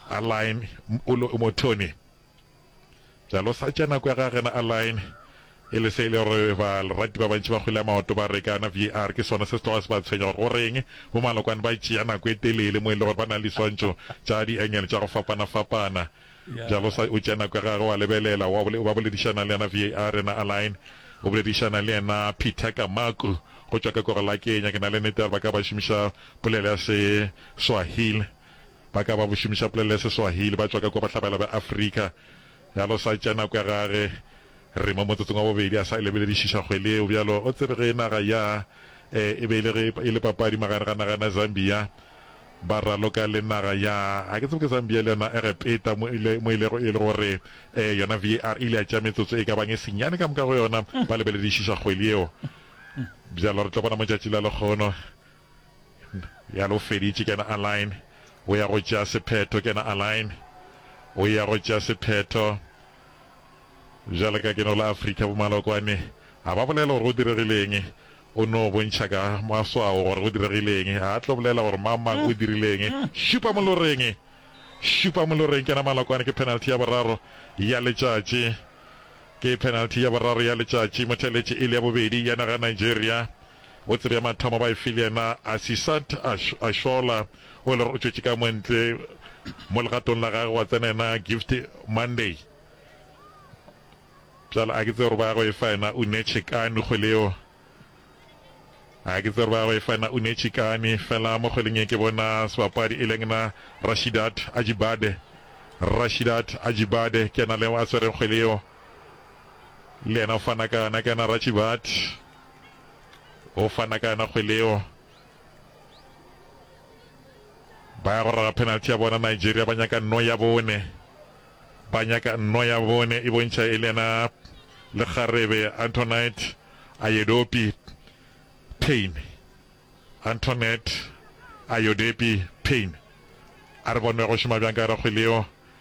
Alain Mpulo o mothomi bjalo sa tša nako ya ga gena Alain e le se e le gore ba lerati ba bantši ba kgwele ya maoto ba re kana VAR ke sona se se tloga se ba tshwenya gore goreng bo malokwane ba tšea nako e telele mo e le gore ba na le diswantšo tša diengele tša go fapana-fapana bjalo sa o tšea nako ya gagwe wa lebelela wa ba boledišana le yena VAR yena Alain o boledišana le yena Peter Kamaku go tšwa ka korolakenya ke na le nete gore ba ka ba šomiša polelo ya se Swahili Ba ka ba bo šomiša polelo ya Seswahili, ba tšwa ka kua bohlabela bja Afrika. Bjalo sa tšea nako ya gage. Re mo motsotsong wa bobedi a sa lebeledišiša kgwele yeo. Bjalo, o tsebe ge naga ya e e be e le ge e le papadi magare ga naga ena Zambia, ba raloka le naga ya, ga ke tsebe ke Zambia le yona Egepeta, mo ile, mo ilego e le gore e, yona VAR e ile ya tšea metsotso e ka bang e senyane ka moka go yona, ba lebeledišiša kgwele yeo. Bjalo re tlo bona mo tšatši la lekgono. Bjalo o feditše, kena Alain. O ya go tšea sephetho, kena Alain. O ya go tšea sephetho. Bjale ka ke no la Afrika, bomalokwane a ba bolele gore go diregile'ng. O no bontšha ka maswao gore go diregile'ng. A tlo bolela gore mang-mang o dirile'ng. Šupa moloreng! Šupa moloreng! Kena malokwane. Ke penalty ya boraro ya letšatši. Ke penalty ya boraro ya letšatši. Mothelletše e le ya bobedi ya naga ya Nigeria. Botse bja mathomo ba e file yena Asisat Ashola, o e le gore o tšwetše ka montle mo legatong la gagwe, gwa tsena yena Gift Monday. Bjale a ke tse gore ba ya go e fa yena Uneche Kani kgwele yeo, a ke tse gore ba ya go e fa yena Uneche Kani. Fela mo kgweleng e ke bona sebapadi e leng na Rashidat Ajibade, Rashidat Ajibade ke yena le a swereng kgwele yeo, le yena o fana ka yona ke yena Rachibat. o fana ka yona kgwele eo ba ya go rera penalty ya bona nigeria ba nyaka nno ya bone ba nyaka nno ya bone e bontšha e le yena lekgarebe antonite ayedopi pain antonet ayodepi pain a re bonwe go šoma bjang ka yona kgwele eo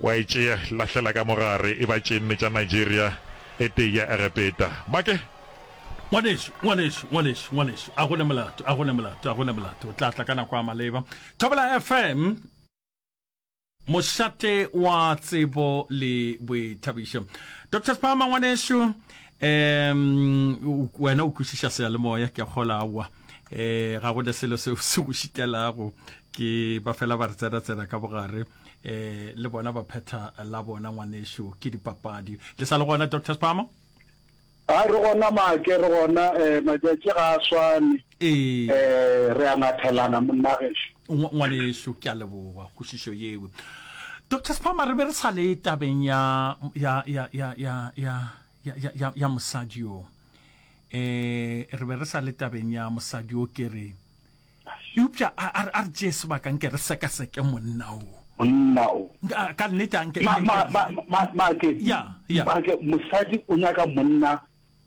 Wa e tšea, lahlela ka mo gare, e ba tše nne tša Nigeria, e tee ya Egepeta. Make! Ngwanešu, ngwanešu, ngwanešu, ngwanešu, a go ne molato, a go ne molato, a go ne molato, o tla tla ka nako ya maleba. Thobela FM, mošate wa tsebo le boithabišo. Doctor Spama, ngwanešu, um, wena o kwešiša seyalemoya, ke a kgola, aowa. eh ga go selo se se go šitelago ke ba fela ba re tsena ka bogare eh le bona ba phetha la bona ngwanešu ke dipapadi le sa le gona dr spama a re gona make re gona eh matšatši ga a swane eh, eh re a ngathelana monnagešu ngwanešu ke a leboga kgosišo yeo dr spama re be re sa le tabeng ya ya ya ya ya ya, ya, ya, ya mosadi yo e re be re sa le tabeng ya mosadi yo ke re eupša a a re- a re tšee sebaka nke re sekaseke monna o monna o Nka- ka nnete a nke Ma- nke- ma- ma- ma- ma- maake Ya, ya. maake mosadi o nyaka monna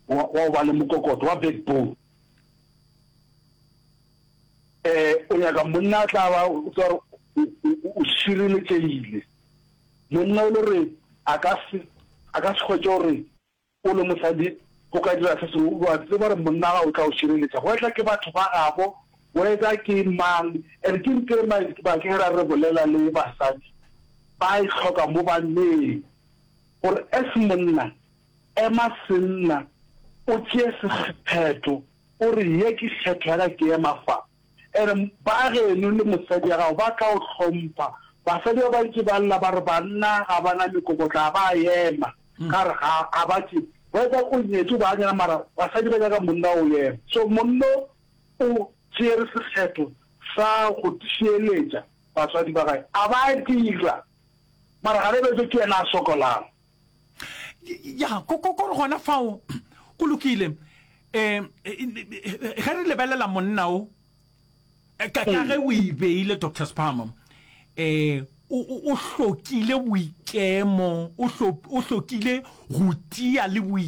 wa wa go ba le mokokoto wa backbone um o nyaka monna a tla ba o tsa gore o- o- o- o šireletšegile Monna o le gore a ka se, a ka se hwetše gore o le mosadi o ka dira se sengwe, o a tseba gore monna wa gago o tla go šireletša, wether ke batho ba gabo, wether ke mang. And ke ntho e Mike ba ke ra re bolela le basadi ba e hloka mo banneng, gore as monna, ema senna, o tšee sephetho, o re ye ke kgetho ya ka, ke ema fa. E re, Baageno le mosadi wa gago ba tla go hlompha. Basadi ba bantši ba lla ba re, Banna ga ba na mekokotlo, ga ba a ema. Ka re, Ga a ba tše. Wetsa o nyetšwe baanyana, mara basadi ba nyaka monna o ema. So monna o tšere sekgetho sa go šireletša batswadi ba gage, a ba dira. Mara ga re betswe ke yena a sokolago. ya ko ko ko gona fao go lokile eh ge re lebelela monna o eh, ka ka ge o e beile doctor spamo eh o o hlokile boikemo o hlokile go tia le boikemo